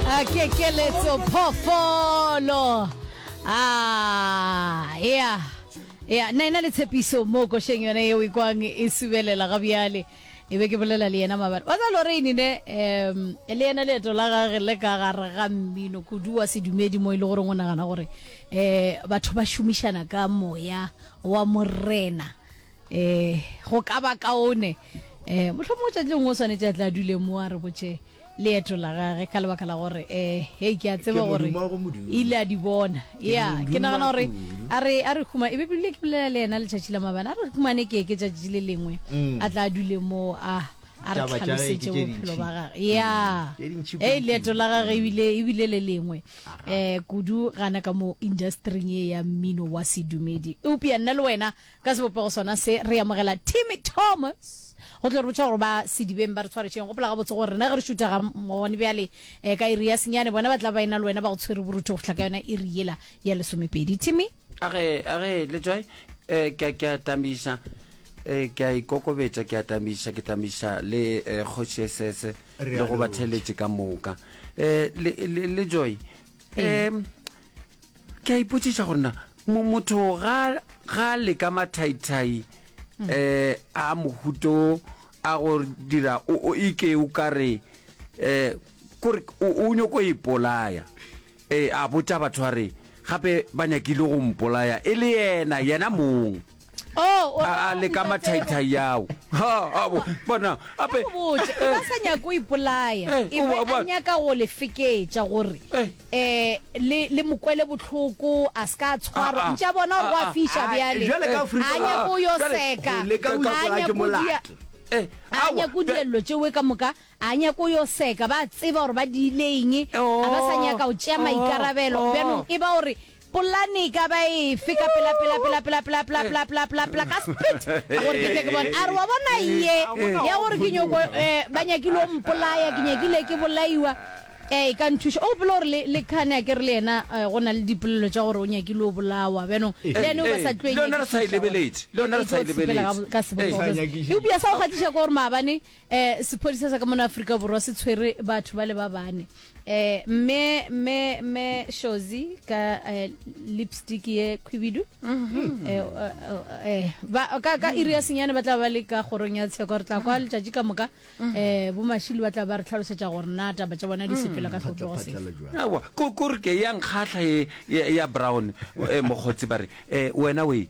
a kekeletso phofolo a ya ya na ena le tshepiso mo košeng yone yeo e kwang e subelela ga bjale e be ke bolela le yena mabane wa tsalo re inine um le yena leeto la gage le ka gare ga mmino kudu wa sedumedi mo e le gore o nagana gore um batho ba šomišana ka moya wa morena Ee, go ka ba kaone. Ee, mohlomongwe tšatši lengwe o swanetše a tla dule mo a re botše leeto la gage ka lebaka la gore ee, hei, ke a tseba gore ile a di bona. Ya, ke nagana gore a re a re huma, e be bile ke bolela le yena letšatši la mabane, a re humane ke ke tšatši le lengwe mm. a tla dule mo a a re tlhalosetse bophelo ba gage ya mm. e leeto la gage ebile ebile le lengwe um kudu gana ka mo industring e ya mmino wa sedumedi eupša nna le wena Ka sebopego sona se, re amogela Timmy Thomas go tlo re botša gore ba sedibeng ba re tshwaretšeng. Gopola gabotse gore rena ge re šutha ga gone bjale eh, ka iri ya senyane, bona ba tla ba ena le wena ba go tshwere borutho go fihla ka yona iri yela ya lesomepedi. Timmy? A re, a re, le tswai, eh, ke a, ke a tamiša, eh, ke a ikokobetša, ke a tamiša, ke tamiša le eh, Kgoši Esese le go batheeletši ka moka. Eh, le, le, le tswai, um ke a ipotsiša go nna motho ga le ka mathaithai um a mohuto a go dira o ike o ka re um kore o nyoko e polaya um a botsa batho a re gape ba nyakile go mpolaya e le yena yena mong Oh, o- a a le ka mathaithai yago bona ape Ke botse, e ba sa nyako o ipolaya Eh, e o be wa bona. a nyaka go le feketša gore Eh. eh, le le mo kwele bohloko a se ka a Ah, ah. tshwarwa ntše a bona gore go Ah, a ah. fiša Ah, bjale jwale ka Afrika a nyako Borwa, yo jwale seka go leka go a utlwa ke nyako dia- molato. Eh, a awa, nyako jwa- dilello tšewe ka moka a nyako yo seka ba tseba gore ba diile eng a ba sa Oh, nyaka go tšea oh, maikarabelo oh. bjanong e ba gore Polane e ka ba efe ka pelapelapelapelapelapelapelapelapelapelapela ka speed gore ke tle ke bone? A re wa bona ye ya gore ke nyoko eh, ba nyakile o mpolaya, ke nyakile ke bolaiwa eh, e ka nthuša. O gopela gore le, le khane a ke re le yena eh, go na le dipolelo tša gore o nyakile o bolawa bjanong le yane o ba sa tlo e Le yona re sa e nyakišiša gore- lebeletše, le yona re sa e Sepela ka lebeletše. bo- ka Ee. sebopego. Sa nyakišiša. Eupša sa go gatiša ke gore maabane Eh, sephodisa sa ka mona Afrika Borwa se tshwere batho ba le ba bane. Eh, me me me Shozi ka eh, lipstick ye khwibidu. Mm-hmm. Eh, eh, eh, ba ka ka iri ya senyane ba tla ba le ka gorong ya tsheko re tla kwa mm-hmm. letšatši ka moka mm-hmm. eh bo mashili ba tla ba re tlhalosetsa gore na taba tša bona di mm. sepela ka tlhopho se. Awa, ko ko re ke ya nkgahla ye ya brown eh mokgotsi ba re eh wena we